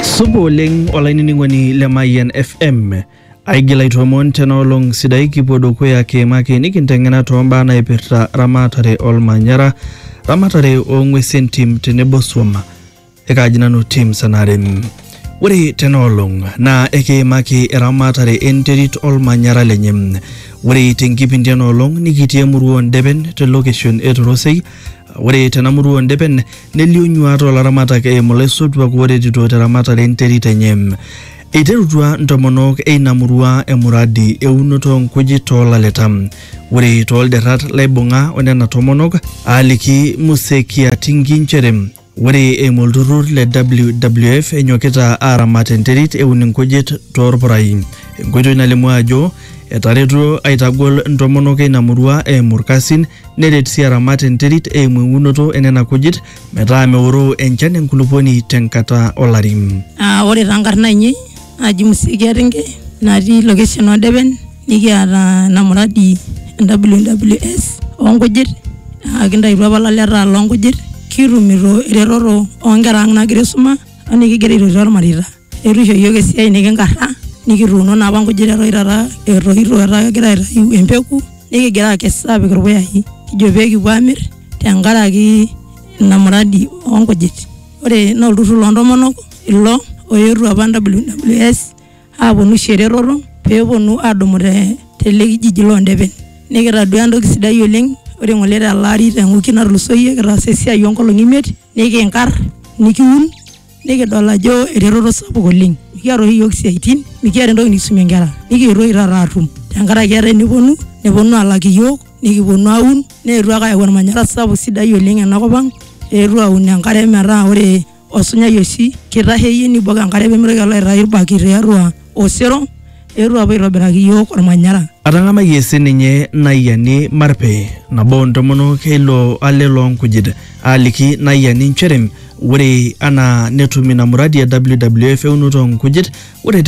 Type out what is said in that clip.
Supa oleng olainining'oni le Mayian FM. Aigil aitoomon tena olong sidai kipuo dukuya kiimaki nikinteng'ena toombaa naipirta ramatare olmanyara, ramatare oong'uesin tim tenebo swam. Ekaaji nanu tim Sanare. Ore tena olong naa ekiimaki eramatare enterit olmanyara lenye. Ore tenkipindi ena olong nikitii emurua oo Ndepen te location e Torosei Ore tena murua oo ndepen nelio nyuaat oo laramatak eimu laisotuak ooretito te ramatare e nterit enye. Eiterutua ntomonok eina murua emuradi eunoto oo nkujit too laleta. Ore too lderrat laibung'a o nena tomonok aaliki Muse Kiatingi nchere. Ore eimu olturrur le WWF enyokita aaramat enterit eun inkujit toorpurai, enkoitoi nalimu ajo etaretuo aitagol ntomonok eina murua eimu ilkasin neret sii aramat enterit eimu eunoto enena kujit metaa meoroo enchan enkulupuoni tenkata olari. Ore taa nkarn aainei naji Musikia Ringe natii location oo Depen nikiata ena muradi e WWS oo nkujit naa kintayutuo apa ilaleta loo nkujit kitumito eretoto oo nkera ang' naagira aisuma o nikigira aitotio irmareita. Eetu isho iyiok esiai nekinkarra nikituuno naa apa nkujit eton taata etoito etaa kegira aitayu empeku nekigira aakes aapik irpuyai kijo pee kipuo aamir tenkaraki ina muradi oo nkujit. Ore naa olturrur loo ntomonok. ilo oetuo apa WWS aponu aisho eretoto peponu adumu te tele kijiji londepen nikitadua entoki sidai oleng ore ng'ole tele ari te wiki natulusoyie kitaasa esiai onkolong'i imiet nikinkarr nikiun nikidol ajo eretoto sapuk oleng mikiata oshi iyiok isiaitin mikiata entoki nikisumie inkera nikietuo oshi taata atum tenkaraki etaa eneponu neponu alak iyiok nikiponu aun neetuo ake ayau ormanyara sapuk sidai oleng enakop ang eetuo aun enkare metaa ore. osunyai oshi kitaheyie nibok enkare pemitoki alo aitayu irbaki tiatua osero eetuo apuo aitobiraki iyiok ormanyara Atang'amayie sininye Naiani Marpe, nabo oo ntomonok e ilo ale loo nkujit, aaliki Naiani nchere ore anaa netum ina muradi e WWF eunoto oo nkujit, ore te